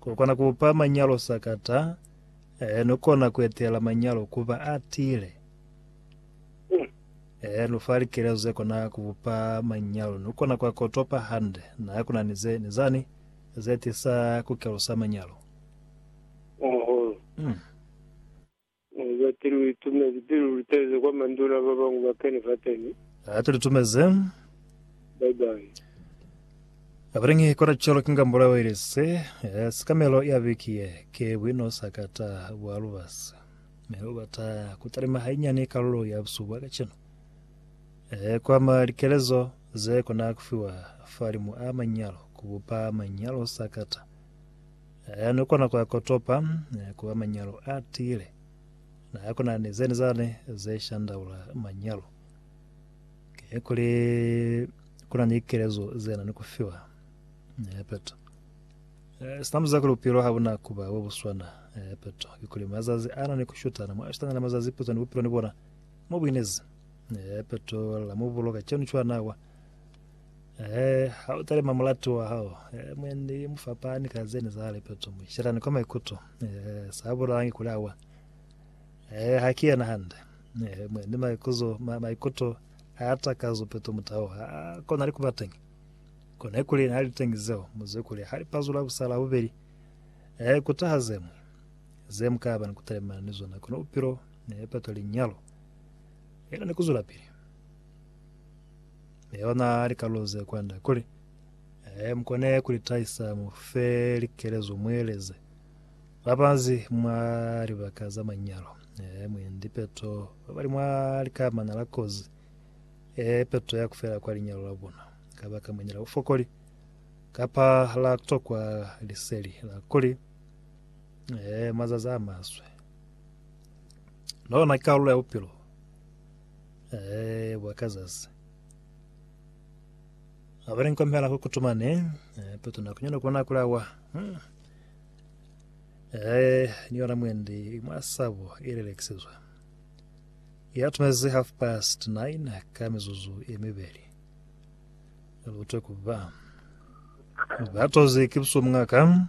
Ku kona ku pa manyalo sakata, e no kona ku etela manyalo ku ba a tiile. E no fa likelezo ze kona ku bupa manyalo. No kona ku a kotopa hande na ku na ni ze ni zani ze tisa ku kelusa manyalo. Mm. Ni za ti lu itumezi pili lu tezi kwa manduna ba bañwi ba keni fateni. Ha tu litumezi. Bye bye. Abelengi kona celo kinga mbulayo ili se sikamelo ya biki ye ke bwino sa kata bwa lubasi mi u bata kutalima hainyani kalulo ya busuku bwa kacenu e kwama likelezo ze kona kufiwa falimu a manyalo kubupa manyalo sa kata Ha ni kona ku akotopa ku ba manyalo a tiile, na ha kuna ni zeni zani ze shandaula manyalo. Ki kuli kuna ni kelezo ze na ni ku fiwa. Epeto. Sina muza kuli bupilo ha buna ku ba bo bu swana. Epeto. Ki kuli mazazi ana ni ku shutana. Mwa shutana na mazazi pizo ni bupilo ni bona mo bu inezi. Epeto. La mu bulo kacenu cwana wa. Ehe, ha u talima mulatu wa hao, eh, mwendi mu fapani ka zeni za lepeto mu shelani kwa maikuto, eh, sa bulalangi kuli awa. Eh, ha ki yena hande. Eh, mwendi maikuzo, ma, maikuto a ya takazo peto mutao, ha kona li kuba tengi. Kona ikuli na li tengi zeo, muze kuli ha li pazula busala bubeli. Eh, kutaha zemwe. Zemu ka ba ni kutalimana ni zona, kona upilo, eh, peto linyalo. Ela ni kuzula pili. Yona likalu ze kwande kuli, Ee, mukone kulitahisa mu fe likelezo mueleze babanzi mwa libaka za manyalo. Ee, mwendi peto babali mwa likamana la kozi e peto ya kufela kwa linyalo la bona kabaka mwendi la bufokoli kapa la tokwa liseli la kuli ee mazazi a maswe. Lona ki kalulo ya bupilo. Eh, bwa kazazi. Abali nkomela ku kutumane, eh, petu na kunyana kubona kulawa. Hmm. Eh, ni yona mwendi mwasabo ilelekisizwa. Ya tumezi half past nine ka mizuzu emibeli. Lutwe kuba. Batozi kipsumngaka.